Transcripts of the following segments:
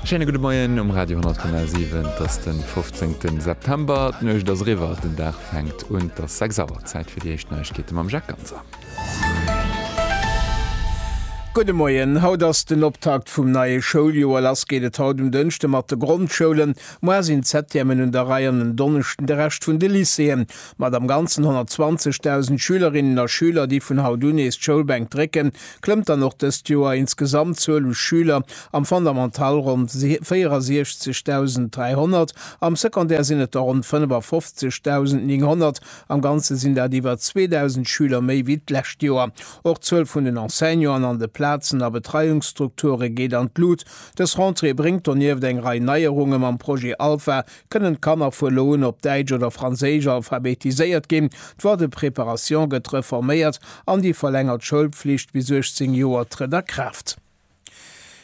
Schéine gudde Moien um Radio 10,7. Et ass den 15. September. D'Nuecht ass eriwwer, den Dag fänkt un. Et ass 6 Auer, Zäit fir déi éischt Neiegkeete mam Jacques Ganser. Gudde Moien, Haut ass den Optakt vum neie Schouljoer. Lass geet et haut um Dënschde mat de Grondschoulen. Muer sinn d'Septièmen un der Rei an en Donneschden de Rescht vun de Lycéeën. Mat am Ganzen 120.000 Schülerinnen a Schüler, déi vun haut un nees d'Schoulbänk drécken, klëmmt dann och dëst Joer ins Gesamtzuel u Schüler am Fondamental ronn 64.300, am Secondaire sinn et der ronn 55.900. Am Ganze sinn dat iwwer 2.000 Schüler méi wéi d'lescht Joer. Och d'Zuel vun den Enseignanten an de Plazen a Betreiungsstrukture geet an d'Lut. Dës Rentrée bréngt donieft eng Rei Neierunge mam Projet Alpha, Kënnen d'Kanner vu elo un op Däitsch oder Franséisch alphabetiséiert ginn? D'Loi de préparation gëtt reforméiert an déi verlängert Schoulpflicht bis 18 Joer trëtt a Kraaft.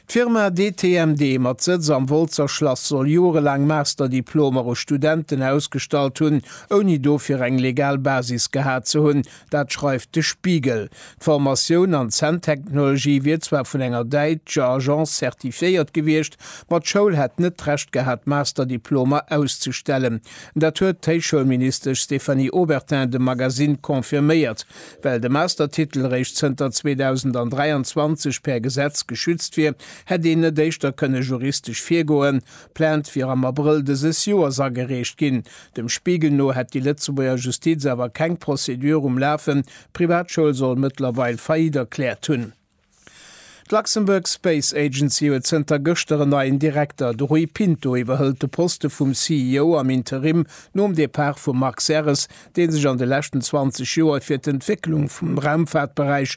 D'Firma DTMD mat Sëtz am Woltzer Schlass soll jorelaang Master-Diplomer u Studenten ausgestallt hunn, ouni dofir eng legal Basis gehat ze hunn, Dat schreift de Spiegel. D'Formatioun an Zänntechnologie wier zwar vun enger däitscher Agence zertifiéiert gewiescht, ma d'Schoul hätt net d'Recht gehat, Masterdiplomer auszestellen. Dat huet d'Héichschoulministesch Stéphanie Obertin dem Magazine confirméiert. Well de Mastertitel réischt zënter 2023 per Gesetz geschützt wier, hätt een net éischter kënne juristesch virgoen. D'Plainte wier am Abrëll dëses Joers agereecht ginn. Dem Spiegel no hätt déi Lëtzebuerger Justiz awer keng Procédure um Lafen, d'Privatschoul soll mëttlerweil Faillite erkläert hunn. D'Luxembourg Space Agency huet zënter gëschter en neien Direkter. De Rui Pinto iwwerhëlt de Poste vum CEO am Interim nom Depart vum Marc Serres, dee sech an de leschten 20 Joer fir d'Entwécklung vum Raumfaartberäich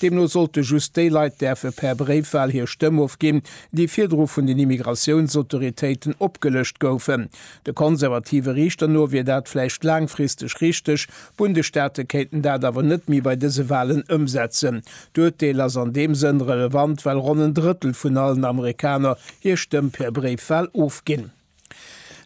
Deemno sollte just déi Leit däerfe per Bréifwal hir Stëmm ofginn, déi virdru vun den Immigratiounsautoritéiten opgelëscht goufen. De konservative Riichter no wier dat vläicht laangfristeg richteg, d'Bundesstaate kéinten dat awer net méi bei dëse Walen ëmsetzen. D'Urteel ass an deem Sënn relevant, well ronn en Drëttel vun allen Amerikaner hir Stëmm per Bréifwal ofginn.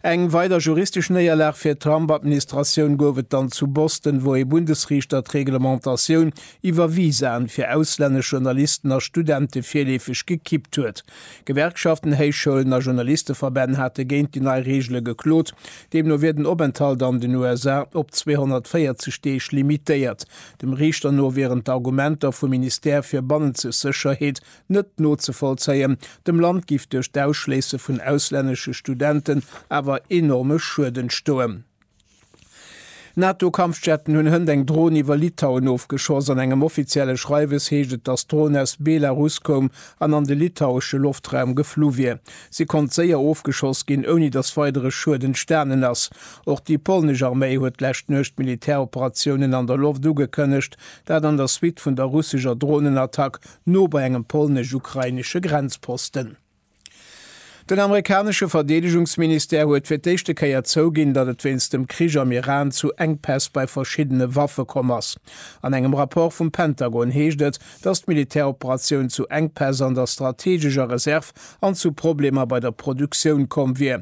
Eng weider juristesch Néierlag fir d'Trump-Administratioun gouf et dann zu Boston, wou ee Bundesriichter d'Reglementatioun iwwer Visaen fir auslännesch Journalisten a Studente virleefeg gekippt huet. Gewerkschaften, Héichschoulen a Journalisteverbänn hate géint déi nei Reegele geklot. Deemno wier den Openthalt an den USA op 240 Deeg limitéiert. Dem Riichter no wieren d'Argumenter vum Ministère fir bannenzeg Sécherheet net nozevollzéien. Dem Land giff duerch d'Ausschléisse vun auslännesche Studenten awer enorme Schued entstoen. NATO-Kampfjetten hunn hënt eng Dron iwwer Litauen ofgeschoss. An engem offizielle Schreiwes heescht et, datt d'Dron aus Belarus koum an an de litauesche Loftraum geflu wier. Si konnt séier ofgeschoss ginn, ouni datt weidere Schued entstanen ass. Och déi polnesch Arméi huet d'lescht Nuecht Militäroperatiounen an der Loft ugekënnegt, dat an der Suite vun der russescher Dronenattack no bei engem polnesch-ukrainesche Grenzposten. Den amerikanesche Verdeedegungsministère huet fir d'éischte Kéier zouginn, datt et wéinst dem Krich am Iran zu Enkpäss bei verschiddene Waffe komm ass. An engem Rapport vum Pentagon heescht et, datt d'Militäroperatioun zu Enkpäss an der strategescher Reserv an zu Problemer bei der Produktioun komm wier,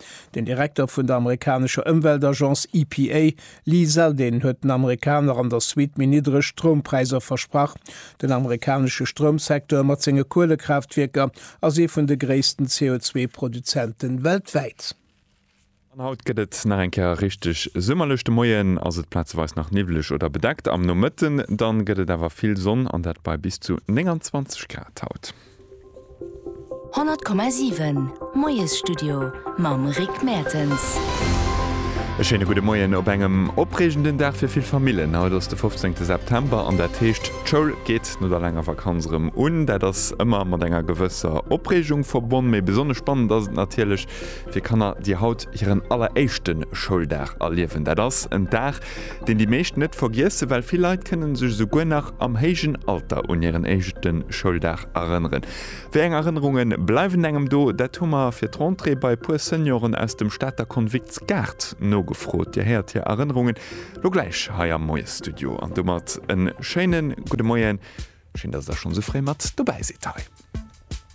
Den Direkter vun der amerikanescher Ëmweltagence EPA, Lee Zeldin, huet den Amerikaner an der Suite méi niddreg Stroumpräisser versprach. Den amerikanesche Stroumsecteur mat senge Kuelekraaftwierker ass ee vun de gréissten CO2-Produzente weltwäit. An haut gëtt et nach eng Kéier richteg summerlech. De Moien ass et plazeweis nach niwweleg oder bedeckt, am Nomëtten dann gëtt et awer vill Sonn an dat bei bis zu 29 Grad haut. 100,7 Moiesstudio mam Rick Mertens. E schéine gudde Moien op engem opreegenden Dag fir vill Famillen. Haut ass de 15 September an dat heescht, d'Schoul geet no der laanger Vakanz erëm un. Dat ass ëmmer mat enger gewësser Opreegung verbonn, mee besonnesch spannend ass et natierlech fir Kanner, déi haut hiren alleréischte Schouldag erliewen. Dat ass en Dag, Deen déi meescht net vergiessen, well vill Leit kënnen sech esouguer nach am héijen Alter un hiren éischte Schouldag erënneren. Wéi eng Erënnerunge bleiwen engem do? Dat hu mer fir d'Rentrée bei e puer Senioren aus dem Stater Konvikts Gaart nogefrot. Dir héiert hir Erënnerungen lo gläich hei am Moiesstudio. An domat e schéine gudde Moien. Schéin, dass der schonn esou fréi mat dobäi sidd hei.